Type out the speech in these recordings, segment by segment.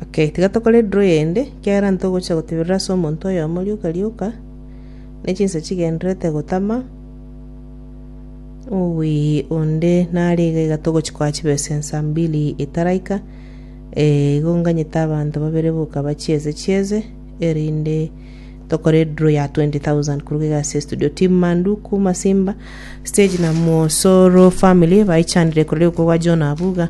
Okay, tiga tokore draw eyende, ekiagera ntogochia gotiberera ase omonto oyomo rioka rioka, ne chinsa chigendererete gotama, owii onde nare iga iga togochia koa chibesa ensa mbili itaraika, igo nganyete abanto babere boka bachieze chieze, erinde tokore draw ya twenty thousand korwa iga ase estudio. Team manduku, masimba, stage na mwosoro family, baechandire korwa rioka okwa John Abuga.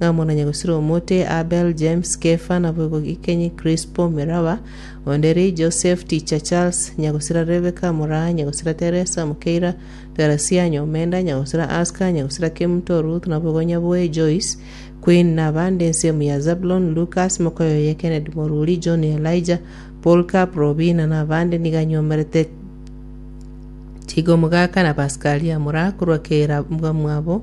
ng'a monanya gosira omote, Abel, James, Kefa, naboigo gikenyi, Krispo, Miraba, onde ri, Joseph, Ticha, Charles, nyagosira Rebeka, moraa, nyagosira Teresa, mokeira, Terasia, ny'omenda, nyagosira Aska, nyagosira Kemuto, Ruth, naboigo nyaboe, Joyce, Queen, na abande, ensemo ya Zabulon, Lukas, mokoyo oye, Kennedy, Moruri, John, Elijah, Polycarp, Robina, na abande, nigo anyomerete chigo mogaka na Paskalia, moraa korwa kera mwabo,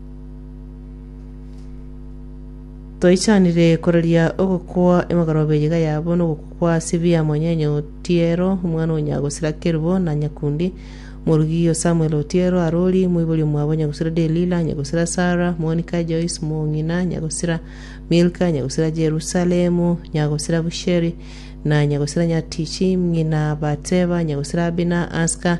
Toichanire koraria ogokwa emegorobe yiga yabo nogokwa kwa Sibia Mwanyenye Otiero, omwana o Nyagosira Kerubo na Nyakundi, Morugi o Samuel Otiero Arori, moibori omwabo Nyagosira Delila, Nyagosira Sarah, Monica Joyce Mong'ina, Nyagosira Milka, Nyagosira Jerusalemu, Nyagosira Busheri, na Nyagosira Nyatichi, ng'ina Bateba, Nyagosira Abina, Aska,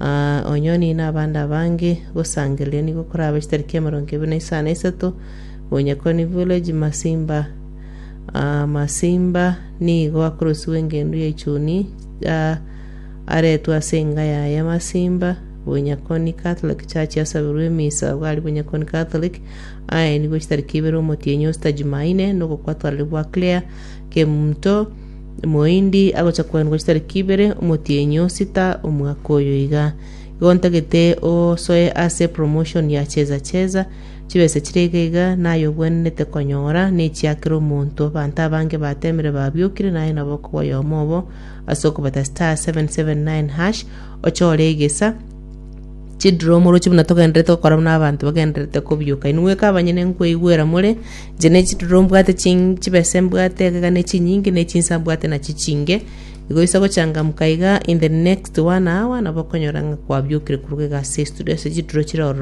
Aa, onyoni na abande abange, gosangereria nigo korabe chitari kia emerongo ebere na isano na isato, Bunyakoni Village, Masimba. Aa, Masimba nigo akorosiwa engendu ya Ichuni, aa, aretwe ase enga yaye Masimba, Bunyakoni Catholic Church yasabirwe emisa abwo aria Bunyakoni Catholic, aenigwe chitari kia ibere omotienyi Osta Jumaine, nogokwa Twalibwa Claire Kemto, Moindi agocha kwanigwa chitariki ibere omotienyi o sita omwaka oyo iga. Igo ntagete osoe ase promotion ya cheza cheza, chibesa chire iga iga naye obwenerete konyora nechiakera omonto abanto abange batemire babiokire naye nabo okobua oyomo obo ase okobeta star 779 hash ochore egesa chidromo oroche buna togenderete gokora buna abanto bagenderete kobioka inwe kabanyene nkoigwera more Inche ne chiduro mbwate ching chibese mbwate egega ne chinyingi ne chinsa mbwate nachi chinge, igo isa gochangamuka iga in the next one hour nabo okonyora ng'a kwabiokire koruga egasi ya estudio ase chiduro chire ororo